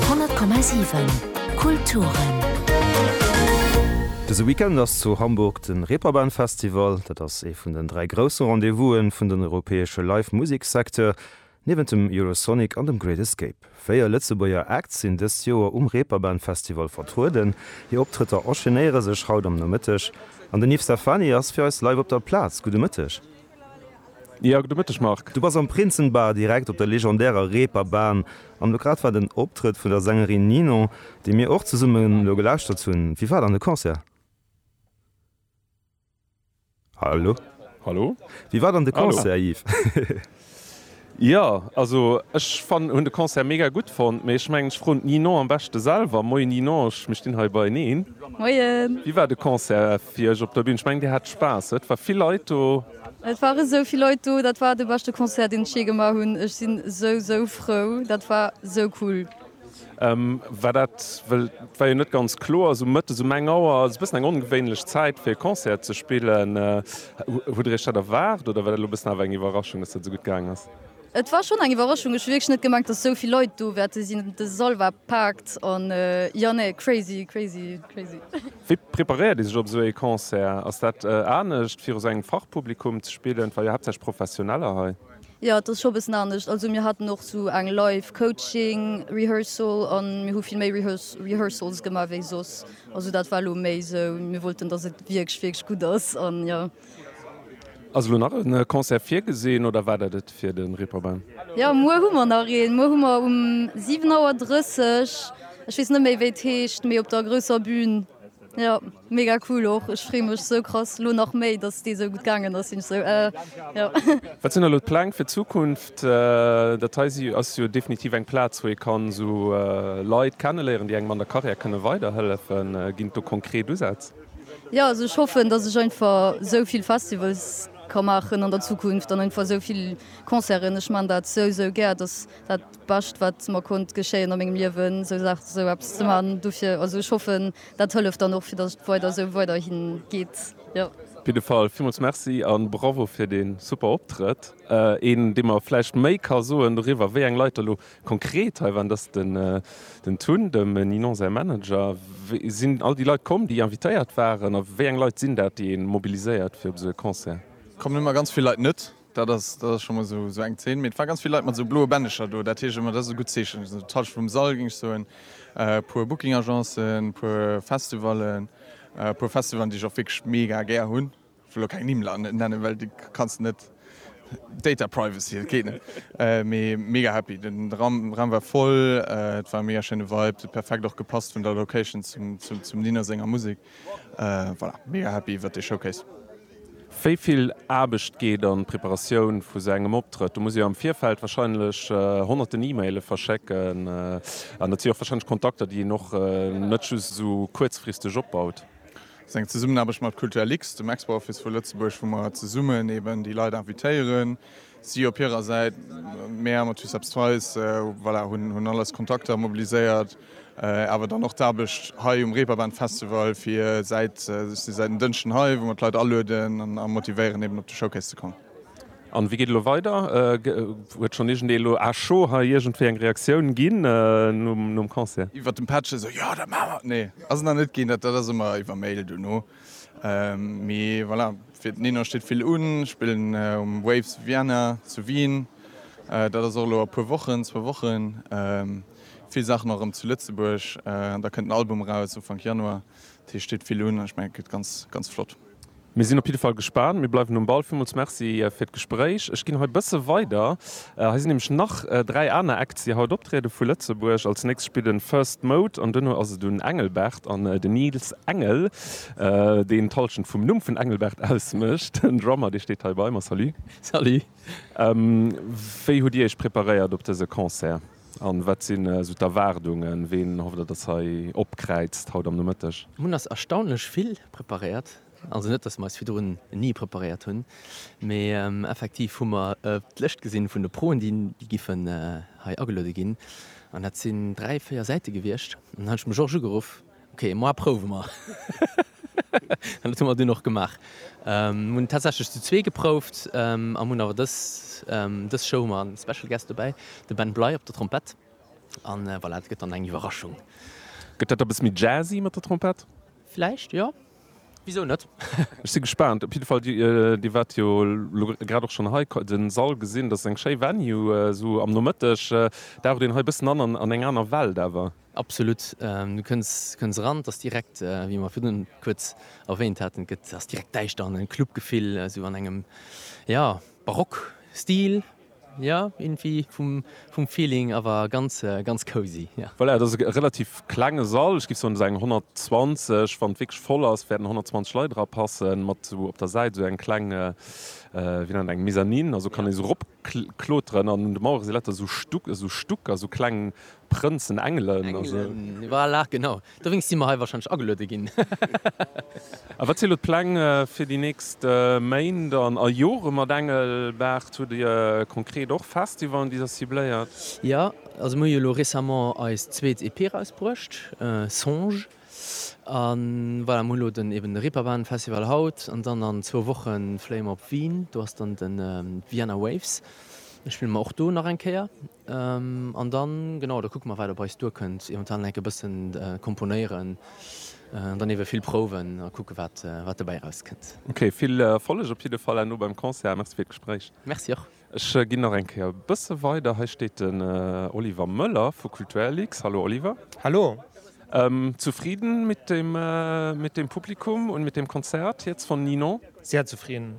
100,7 Kulturen. Dëse Weekend ass zu Hamburg de Reeperbahn Festival. Dat ass ee vun den dräi grousse Rendez-vouse vun den europäesche Live Musek Secteur, niewent dem Eurosonic an dem Great Escape. Véier Lëtzebuerger Acts sinn dëst Joer um Reeperbahn Festival vertrueden. Hir Optrëtter enchaînéiere sech haut am Nomëtteg an den Yves Stefani ass fir eis live op der Plaz. Gudde Mëtteg. Jörg, de Mëtteg, Marc. Du bass am Prinzenbar direkt op der legendärer Reeperbahn an elo grad war den Optrëtt vun der Sängerin Ninon, déi mir och zesumme elo gelauschtert hunn. Wéi war dann de Concert? Hallo? Hallo? Wéi war dann de Concert, Yves? Jo also ech fannen hun de Concert mega gudd fonnt, mee ech mengen ech froen d'Ninon am beschte selwer. Moien Ninon, ech mir stinn hei beieneen. Moien. Wéi war de Concert fir iech op der Bühn? Ech mengen dir hat Spaass, huet? War vill Leit do? Et ware esou vill Leit do, dat war de beschte Concert deen ech jee gemaach hunn. Ech sinn esou esou frou, dat war esou cool. War dat well, et war jo net ganz kloer, esou mëttes um eng Auer ass e bëssen eng ongewéinlech Zäit fir e Concert ze spillen. Hutt der iech dat erwaart oder war dat elo e bëssen awer eng Iwwerraschung, datt dat esou gutt gaang ass? Et war schonn eng Iwwerraschung, ech hu wierklech net gemengt, datt esou vill Leit do wäerte sinn. De Sall war paakt an jo nee, crazy, crazy, crazy. Wéi preparéiert ee sech op esou ee Concert? Ass dat anescht viru sou engem Fachpublikum ze spillen? Et war jo haaptsächlech Professioneller hei. Jo et ass scho bessen anescht, also mir haten och sou eng live coaching rehearsal an mir hu vill méi rehearsals gemaach wéi soss, also dat war lo méi sou mir wollten dass et wierklech wierklech gutt ass an jo. Ass elo nach en Concert virgesinn oder war dat et fir den Reeperbahn? Jo muer hu mer nach een, muer hu mer um 7 Auer 30, ech weess net méi wéi et heescht, mee op der grousser Bühn. Jo mega cool och ech free mech sou krass lo nach méi dass déi sou gutt gangen ass sinn sou jo. Wat sinn elo d'Pläng fir d'Zukunft? Dat hei si ass jo definitiv eng Plaz wou ee kann esou Leit kenneléieren déi engem an der Carrière kënne weider hëllefen. Ginn et do konkret Usätz? Jo also ech hoffen dass ech einfach sou vill Festivals ka maachen an der Zukunft an einfach sou vill Concerten. Ech man dat sou sou gär dass dat. Bescht wat mer konnt geschéien a mengem Liewen sou Saachen sou eppes ze man dofir. Also ech hoffen dat hëlleft dann och fir dass et weider sou weiderhin geet jo. Op jidde Fall villmools Merci an Bravo fir den super Optrëtt. Een dee mer vläicht méi ka soen doriwwer wéi eng Leit der lo konkret hei waren dat ass den Tun, dem Ninon säi Manager. Sinn all déi Leit komm déi invitéiert waren a wéi eng Leit sinn dat déi een mobiliséiert fir op esou e Concert? Kommen ëmmer ganz vill Leit net. Dat ass dat ass scho mol sou eng Zeen. Mee et war ganz vill Leit mat sou bloe Bändecher do. Dat heescht ëmmer, dat ass e gutt Zeechen. Esou de Touch vum Sall, géing ech soen. E puer Booking-Agencen, e puer Festivallen, e puer Festivalen, déi ech och wierklech mega gär hunn. Ech wëll elo keng Nimm nennen, well déi kanns de net, Data Privacy, dat geet net. Mee mega happy. Den Raum Raum war voll. Et war e mega schéine Vibe. Et huet perfekt och gepasst vun der Location zum zum Nina senger Musek. Voilà, mega happy iwwert dee Showcase. Wéi vill Aarbecht geet an d'Preparatioun vu sou engem Optrëtt? Do musst Dir am Virfeld wahrscheinlech honnerten E-Maile verschécken an dat si och wahrscheinlech Kontakter, déi een och net just esou kuerzfristeg opbaut. Dat ass eng Zesummenaarbecht mat Kulturlux, dem Expo-Office vu Lëtzebuerg, wou mer zesummen eeben déi Leit invitéieren, Si op hirer Säit, Mär mat Huss Eppes Treis, voilà, hunn alles Kontakter mobiliséiert, awer dann och d'Aarbecht hei um Reeperbahn Festival fir säit, ech si säit en Dënschden hei, wou mer d'Leit alueden a motivéieren eben op de Showcase ze kommen. An wéi geet elo weider? Huet schonn iergend ee elo à chaud hei iergendwéi eng Reaktioun ginn nom Concert? Iwwert dem Patch esou, jo dat maache mer, nee ass nach net ginn, dat ass ëmmer iwwer Mail duerno. Mee voilà, fir den Eno steet vill un. Ech spillen um Waves Vienna zu Wien. Dat ass och elo a puer Wochen, zwou Wochen. Vill Saachen och erëm zu Lëtzebuerg. An da kënnt en Album eraus Ufank Januar. Dat heescht, steet vill un an ech mengen, et gëtt ganz, ganz flott. Mir sinn op jidde Fall gespaant. Mir bleiwen um Ball. Villmools Merci fir d'Gespréich. Ech ginn hei bësse weider. Hei sinn nämlech nach dräi aner Acts déi haut optrieden vu Lëtzebuerg. Als nächst spillt en First Mode an duerno ass et un Engelbert an den Nils Engel, deen d'Hallschent vum Numm vun Engelbert ausmécht, en Drummer dee steet hei bei mer. Salut. Salut. Wéi hutt dir iech preparéiert op dëse Concert an wat sinn esou d'Erwaardungen? Ween hofft der dass hei opkräizt haut am Nomëtteg? Mir hunn ass erstaunlech vill preparéiert. Also net, dass mer eis virdrun ni preparéiert hunn, mee effektiv hu mer d'Lëscht gesinn vun de Proen, déi giffen hei ageluede ginn, an dat sinn dräi, véier Säite gewiescht. An dann hunn ech dem Georges ugeruff, Ok, moi prouwe mer. An dat hu mer dunn och gemaach. Mir hunn tatsächlech zu zwee geprouft a hunn awer dës dës Show hu mer en Special Guest dobäi, de Ben Bly op der Trompett. A voilà, et gëtt dann eng Iwwerraschung. Gëtt dat e bësse méi jazzy mat der Trompett? Vläicht, jo. Wisou net? Ech si gespaant. Op jidde Fall, Dir waart jo elo grad och schonn hei, den Sall gesinn. Dat ass eng schéi Venue esou am Nomëtteg. Daucht een hei e bëssen an an eng aner Welt awer. Absolut. Du kënns kënns eran, et ass direkt, wéi mer virdrun kuerz erwähnt haten, et gëtt, ass direkt däischter an e Clubgefill esou an engem, jo, Barock-Stil. Jo irgendwie vum vum Feeling awer ganz ganz cozy jo. Voilà, et ass e relativ klenge Sall, ech géif soen esou eng 120, wann et wierklech voll ass wäerten 120 Leit era passen, mat esou op der Säit esou eng kleng wéi nennt een eng Mezzanine, also kann ee esou erop kloteren an un de Mauere si lauter esou Stuck esou Stuck, esou kleng Prënzen, Engelen a sou. Engelen, voilà, genau. Dowéinst si mer hei warscheinlech ageluede ginn. A wat si elo d'Pläng fir déi nächst Méint a Jore mat Engelbert? Hutt Dir konkret och Festivalen, déi Der cibléiert? Jo, also mir hu jo elo récemment eis zweet EP erausbruecht, Songe. A voilà, mir hu elo den, eben de Reeperbahn Festival haut an dann an zwou Woche fléie mer op Wien. Do ass dann de Vienna Waves, da spille mer och do nach eng Kéier. An dann, genau, da kucke mer wat op eis duerkënnt, eventuell nach enke bëssen komponéieren an dann iewe vill prouwen a kucke wat dobäi erauskënnt. Ok, vill Erfolleg op jidde Fall herno beim Concert a merci fir d'Gespréich. Merci och. Ech ginn nach eng Kéier e bësse weider. Hei steet den Oliver Möller vu Kulturlux. Hallo Oliver. Hallo. Zufridden mit dem Publikum und mit dem Konzert jetzt von Ninon? Sehr zufrieden.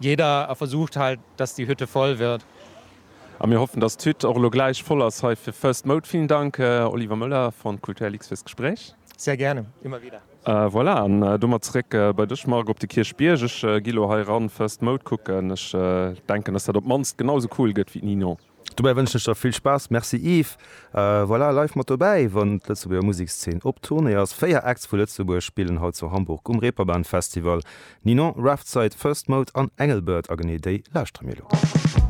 Jeder versucht halt dass die Hütte voll wird. A mir hoffen dass d'Hütt och elo gläich voll ass hei fir First Mode. Villen Dank Oliver Möller von Kulturlix firs Gespréich. Sehr gerne, immer wieder. Voilà, an domat zeréck bei dech Marc op de Kierchbierg. Ech gi elo hei eran First Mode kucken. Ech denken dass dat op d'mannst genau sou cool gëtt wéi d'Ninon. Dobäi wënschen ech der vill Spaass. Merci Yves. Voilà, live mat dobäi wann d'Lëtzebuerger Musekszeen op Tournée ass. Véier Acts vu Lëtzebuerg spillen haut zu Hamburg um Reeperbahn Festival, Ninon, Roughtside, First Mode an Engelbert a genee déi lauschtere mir elo.